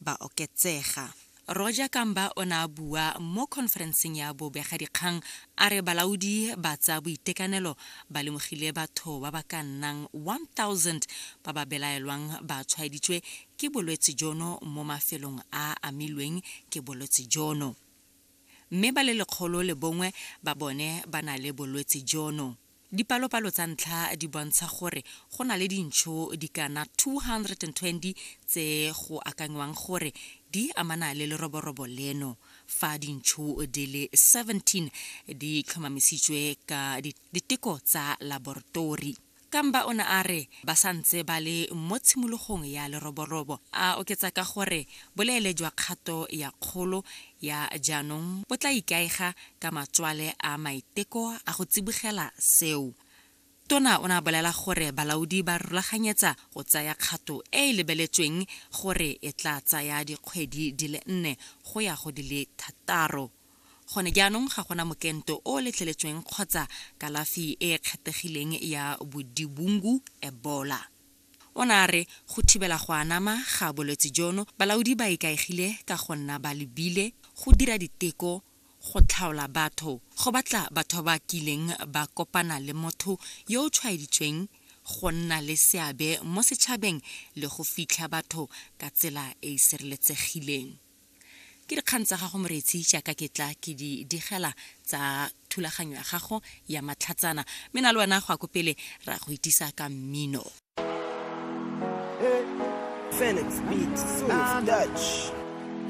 ba oketsega. Roger Kamba o ne a bua mo khonferenseng ya bobegadikgang a re balaodi ba tsa boitekanelo ba lemogile batho ba ba ka nnang 1,000 ba ba belaelwang ba tshwaeditswe ke bolwetse jono mo mafelong a a amilweng ke bolwetse jono mme ba le lekgolo le bongwe ba bone ba na le bolwetse jono. Dipalopalo tsa ntlha di bontsha gore go na le dintsho di kana 220 tse go akanywang gore di amana le leroborobo leno, fa dintsho di le 17 di tlhomamisitswe ka diteko tsa laboratori. Kamba o ne a re ba sa ntse ba le mo tshimologong ya leroborobo, a oketsa ka gore boleele jwa kgato ya kgolo ya jaanong bo tla ikaega ka matswale a maiteko a go tsibogela seo. Tona o ne a bolela gore balaodi ba rulaganyetsa go tsaya kgato e e lebeletsweng gore e tla tsaya dikgwedi di le nne go ya go di le thataro. Gone jaanong ga gona mokento o o letleletsweng kgotsa kalafi e e kgethegileng ya bodibungu, Ebola. O ne a re go thibela go anama ga bolwetse jono, balaodi ba ikaegile ka go nna ba lebile, go dira diteko, go tlhaola batho, go batla batho ba ba kileng ba kopana le motho yo o tshwaeditsweng, go nna le seabe mo setšhabeng le go fitlha batho ka tsela e e sireletsegileng. Ke dikgang tsa gago Moretsi, jaaka ke tla ke di digela tsa thulaganyo ya gago ya matlhatsana. Mme na le wena go ya ko pele ra go itisa ka mmino. Felix Beat, Source, Dutch.